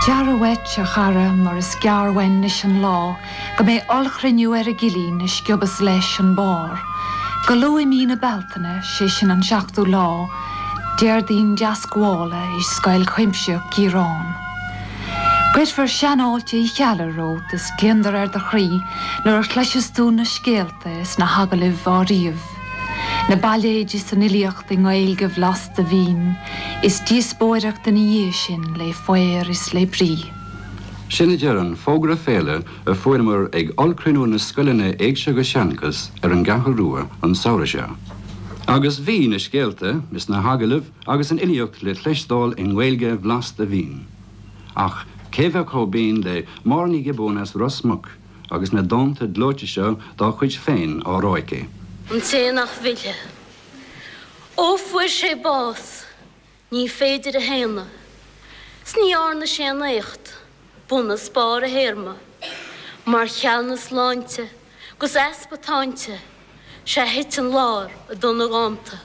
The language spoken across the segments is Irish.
Gearr uait, a chara, mar is gearr uainn 'nois an lá go mbeidh ollchruinniú ar an gCillín a sciobas leis an barr go luath i mí na Bealtaine, sé sin an seachtú lá Déardaoin Deascmhála i Scoil Chuimsitheach Chiaráin. Cuirfear seanfháilte Uí Cheallaigh romhat is gliondar ar do chroí nuair a chloiseas tú na scéalta is na hagallaimh á ríomh. Na bailéid is an fhilíocht i nGaeilge bhlasta bhinn is díospóireacht ina dhiaidh sin le faobhar is le brí. Sin a deir an fógra féile a fuaireamar ag ollchruinniú na scoileanna Éigse agus Seanchais ar an gCeathrú Rua an samhradh seo. Agus bhí na scéalta is na hagallaimh agus an fhilíocht le cloisteáil i nGaeilge bhlasta bhinn. Ach cé bheadh chomh binn le Máire Ní Ghiobúin as Ros Muc, agus na dánta gleoite seo dá chuid féin á rá aici. An té nach bhfillfidh ó fuair sé bás ní féidir a shéanadh 's ní dhearna sé aon éacht bun 's barr a théarma Mar cheal na sláinte 'gus easpa táinte sea thit an lár a d'fhan a dhánta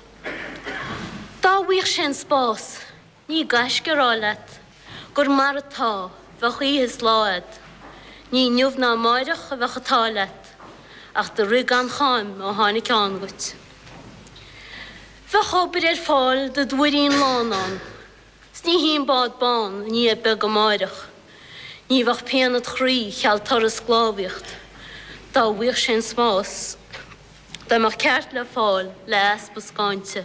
Dá bhfuigheadh sé an spás Ní gaisce a rá leat gur mar atá, bheadh oíche is lá agat. Ní inniu ná amáireach a bheadh an t-ádh leat, ach do rith gan cháim ó tháinic ann dhuit. Bheadh obair ar fáil duit uair aoin lán ann, 's ní hí an bád bán an oíche beag amáireach. Ní bheadh pian id chroí cheal turas sclábhaíocht, dá bhfuigheadh sé an spás dá mbeadh ceart le fáil le easpa scáinte.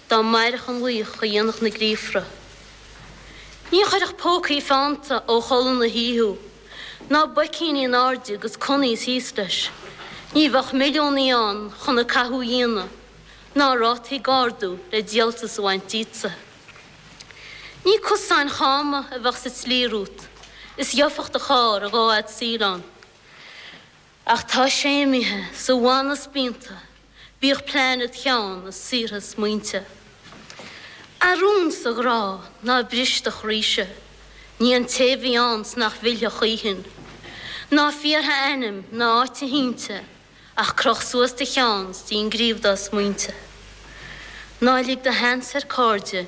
Dá mairfeadh an laoch a dhéanfadh na gníomhartha. Ní chuirfeadh pócaí feannta ó chodladh na hoíche thú, ná boicíní in airde agus cónaí thíos leis. Ní bheadh milliúnaí ann chun a cathú a dhéanamh, ná rátaí ag ardú le díoltas a bhaint díotsa. Ní cosáin chama a bheadh sa tslí romhat, is gheobhadh do charr a dhá fhad saoil ann. Ach tá sé imithe 's a bhanna spíonta, bíodh plean id cheann is saor do smaointe. A rún 's a ghrá ná bris do chroíse, i ndiaidh an té bhí ann 's nach bhfillfidh choíchin. Ná fiafraigh a ainm ná áit a shínte, ach croch suas do cheann 's déan gníomh do smaointe. Ná lig do sheans ar cairde.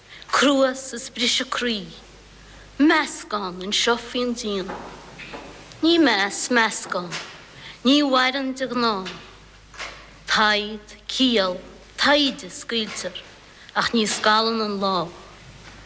Cruas is briseadh croí. Meascán anseo faoin díon. Ní meas, meascán. Ní mhaireann de ghnáth. Taghd, ciall, taighde, scaoiltear, ach ní scalann an lá.